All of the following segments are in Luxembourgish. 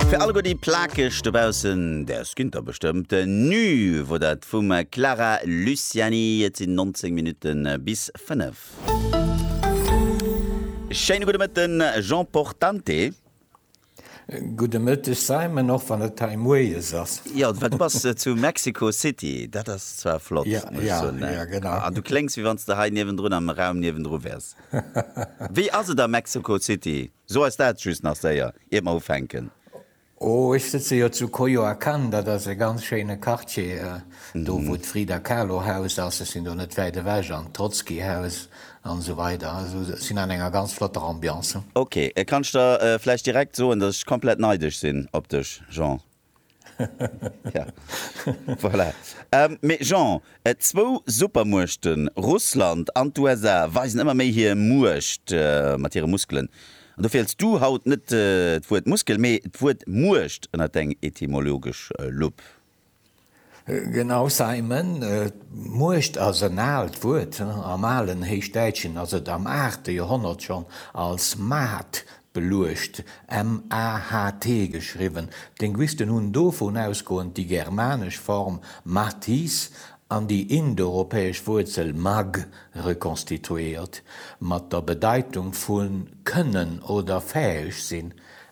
Fir alleguer déi Plakeg dobaussen, däers ginn der bestëmmt Nu wor dat vum Clara Luciani. Et sinn 19 Minutte bis 5. Schéine gudde Mëtten, Jean Portante. Gudde Mëtteg, Simon, och wann et hei moies ass. Jo, well du bass zu Mexico City, dat ass zwar flott, muss ech soen. Jo, jo, jo, genau. An du kléngs, wéi wann s de hei niewendrun am Raum niewendru wäers. Wéi ass et a Mexico City? So ass dat just nach séier iert mer ufänken. Oh, ech sëtze jo zu Coyoacán, dat ass e ganz schéine Quartier, do wou d'Frida Kahlo Haus ass, ech sinn do net wäit ewech, an d'Trotzki Haus an esou weider, also ech sinn an enger ganz flotter Ambiance. Ok, kann ech der vläicht direkt soen, dass ech komplett neidesch sinn op dech Jean? Ja, voilà. Mee Jean, zwou Supermuechten, Russland an d'USA, weisen ëmmer méi hir Muecht mat hire Muskelen. An dofir hëls du haut net d'Wuert Muskel, mee d'Wuert Muecht ënner deng etymologesch Lupp. Genau, Simon, d'Muecht ass en aalt Wuert. Am alen Héichdäitschen ass et am aachte Joerhonnert schonn als Maht beluecht, MAHT geschriwwen. D'Linguisten hunn dovun ausgoend déi germanesch Form Mathis an déi indoeuropäesch Wuerzel Magh rekonstituéiert, mat der Bedeitung vu kënnen oder fäeg sinn,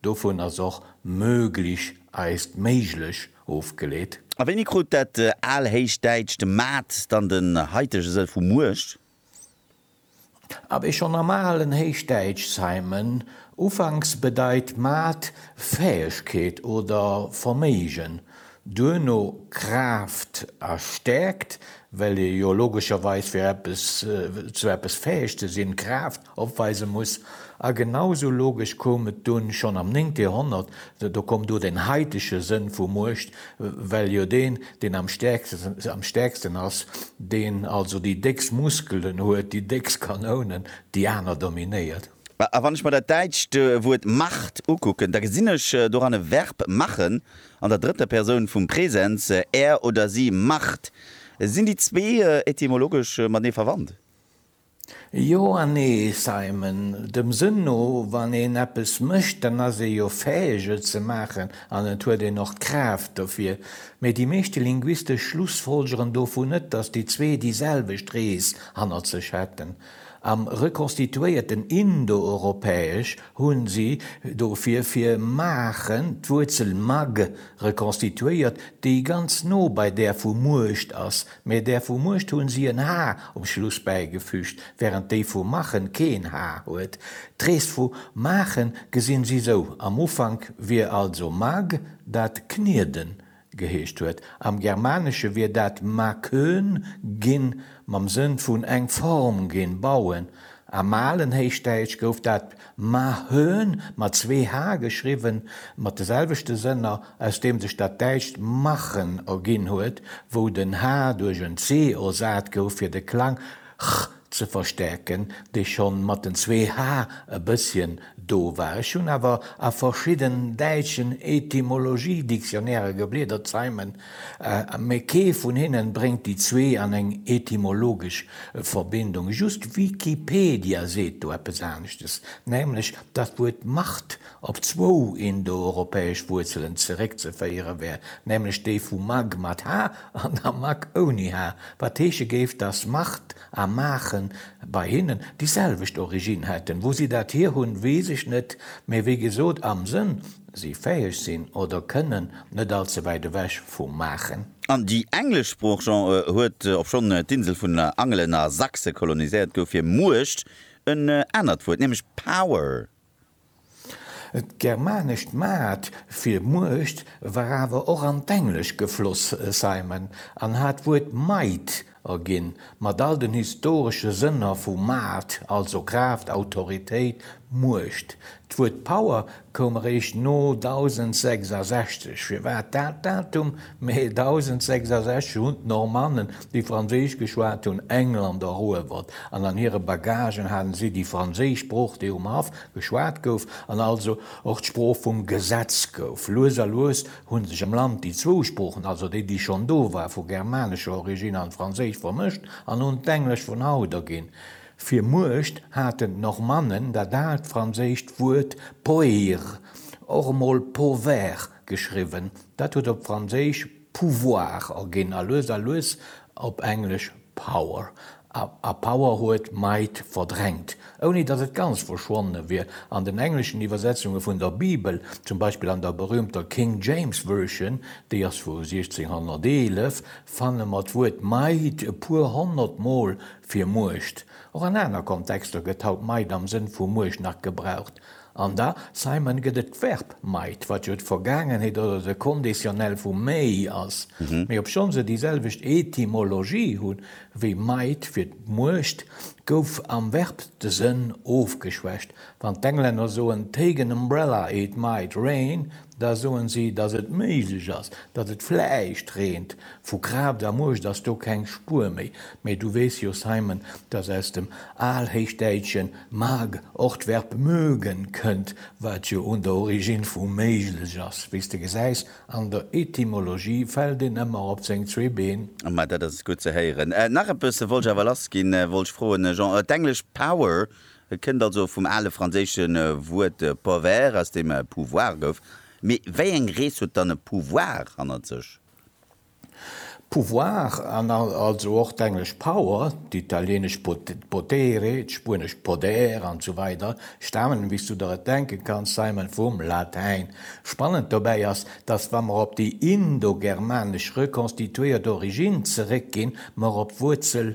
Dovun ass och möglich, eist méiglech, ofgeleet. A wéini krut dat Alhéichdäitscht Maat dann den haitege Sëll vu Muecht? A wéi schonn am alen Héichdäitsch Simon ufanks bedeit Maat Fäegkeet oder Verméigen, duerno Kraaft a Stäerkt, well ee jo logescherweis fir eppes zu eppes fäeg ze sinn Kraaft opweise muss, a genau esou logesch koum et dunn schonn am néngte Joerhonnert, do koum do den haitege Sënn vu Muecht, well jo deen, deen am stäerksten, am stäerksten ass, deen also déi déckst Muskelen huet, déi déckst Kanounen, déi aner dominéiert. A wann ech mer dat däitscht Wuert Macht ukucken, da gesinn ech doran e Verb machen an der drëtter Persoun vum Presens, er oder si macht. Sinn déi zwee etymologesch matenee verwandt? Jo an nee, Simon. Dem Sënn no, wann een eppes mécht, dann ass ee jo fäeg, et ze maachen an et huet een och d'Kraaft dofir. Mee déi meeschte Linguiste schlussfolgeren dovun net, datt déi zwee déi selwecht Rees hannert sech hätten. Am rekonstituéierten Indoeuropäesch hu si dofir fir maachen d'Wuerzel mag rekonstituéiert, déi ganz no bei där vu Muecht ass, Mee där vu Muecht hunn si en H um Schluss bäigefüügt, wärend déi vu Machen keen H huet. D'Rees vu Maachen gesinn si sou, Am Ufank wier also Mag, dat Knieden geheescht huet. Am Germanesche wier dat Makön ginn, mam Sënn vun eng Form ginn, bauen. Am alen Héichdäitsch gouf dat Mahön, mat zwee h geschriwwen, mat de selwechte Sënner, aus deem sech dat däitscht machen erginn huet, wou den h duerch en c ersat gouf, fir de Klang ch ze verstäerken, dee scho mat den zwee h e bësschen do war. Ech hunn awer a verschidden däitschen Etymologie-Dictionnairen gebliedert, Simon Mee kee vun hinnen bréngt déi zwee an eng etymologesch Verbindung. Just Wikipedia seet do eppes aneschtes, nämlech datt d'Wuert Macht op zwou indoeuropäesch Wuerzelen zeréckzeféiere wär, nämlech déi vu mag mat h an der mak ouni h, wat heesche géif, datt Macht a Maachen bei hinnen déi selwecht Originn hätten. Wou si dat hir hunn, weess ech net, mee wéi gesot, am Sënn. si fäheg sinn oder kënnen, net all ze wäit ewech vu maachen. An déi englesch Sprooch, Jean, huet, obschonn d'Insel vun Angelen a Sachse koloniséiert gouf, fir Muecht en anert Wuert, nämlech power. D'germanescht maat fir Muecht war awer och an d'Englesch gefloss, Simon, an hat d'Wuert might Ginn, mat all den historesche Sënner vu Maart, also Kraaft, Autoritéit, Muecht. D'Wuert Power koum eréischt no 1066. Firwat dat Datum? Mä 1066 hunn d'Normannen, déi Franséisch geschwat hunn, England eruewert, an an hire Bagagen hate si déi franséisch Sprooch, déi um Haff geschwat gouf, an also och d'Sprooch vum Gesetz gouf. Lues a lues hunn sech am Land déi zwou Sproochen, also déi, déi schonn do war, vu germanescher Origine an d'Franséisch vermëscht an hunn d'Englesch vun haut erginn. Fir Muecht haten d'Normannen dat aalt franséischt Wuert poeir, och emol povair geschriwwen, dat huet op Franséisch pouvoir erginn a lues a lues op Englesch power. a power huet might verdrängt, ouni datt et ganz verschwonne wier. An den engleschen Iwwersetzunge vun der Bibel, zum Beispill an der berüümter King James Version, déi ass vu 1611, fanne mer d'Wuert might e puer honnert Mol fir Muecht. Och an aner Kontexter gëtt haut might am Sënn vu Muecht nach gebraucht, An da, Simon, gëtt et d'Verb might, wat jo d'Vergaangenheet oder de Conditionnel vu may ass, mee obschonn se déi selwecht Etymologie hu wéi might fir d'Muecht, gouf am Verb de Sënn ofgeschwächt. Wann d'Englänner soen take an umbrella, it might rain, da soen si, datt et méiglech ass, datt et vläicht reent. Vu Kraaft a Muecht ass do keng Spuer méi. Mee du weess jo, Simon, datt aus dem Alhéichdäitschen Mag, och d'Verb mögen kënnt, wat jo un der Origine vu méiglech ass, wéi s de gesäis, an der Etymologie fält een ëmmer op seng zwee Been. Ma dat ass gutt ze héieren. Nach eppes wollt ech awer lassginn, wollt ech froen, Jean, d'englesch power kënnt also vum ale franséische Wuert power, aus deem pouvoir gouf, mee wéi eng Rees huet dann e Pouvoir hannert sech? Pouvoir an also och d'englesch power, d'italienesch potere, d'spuenesch poder an esou weider stamen, wéi s du der et denke kanns, Simon, vum Latäin. Spannend dobäi ass, datt, wa mer op déi indogermanesch rekonstituéiert Originn zeréckginn, mer op d'Wuerzel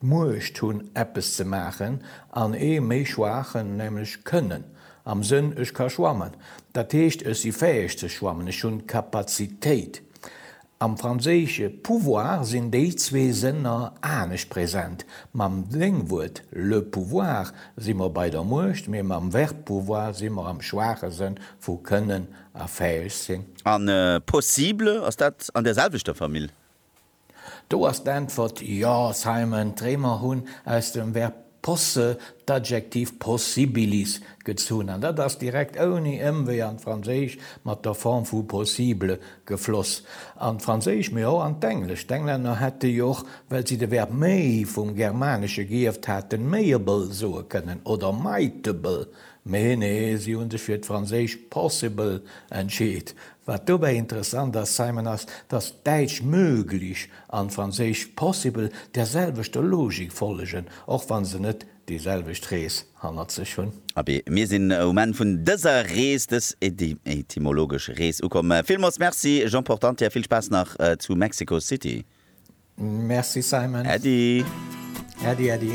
d'Muecht hunn eppes ze maachen, an ee méi schwaachen, nämlech d'Kënnen, am Sënn, ech ka schwammen, dat heescht, ech si fäeg ze schwammen, ech hunn d'Kapazitéit. Am Franséische pouvoir sinn déi zwee Sënner anescht present. Mam Déngwuert le pouvoir si mer bei der Muecht, mee mam Verb pouvoir si mer am schwaache Sënn vu kënnen a fäeg sinn. A possible, ass dat an där selwechter Famill? Do ass d'Äntwert, Jo, Simon, d'Réimer hunn aus dem Verb posse d'Adjektiv possibilis gezunn, an dat ass direkt ouni Ëmwee an d'Franséisch mat der Form vu possible gefloss. An d'Franséisch, mee och an d'Englesch. D'Englänner hätte jo och, well si de Verb may vum Germanesche geierft haten, mayable soe kënnen oder mightable Mee nee, si hu sech fir d'franséischt possible entscheet. Wat dobäi interessant ass, Simon, ass, datt d'däitsch möglich an d'franséischt possible der selwechter Logik follegen, och wa se net déi selwecht Rees hannert sech hunn. Abee, mir sinn um Enn vun dëser Rees, dës etymologesch Rees ukomm. Villmools Merci, Jean Portantier. Vill Spaass nach zu Mexico City. Merci, Simon. Äddi. Äddi, äddi.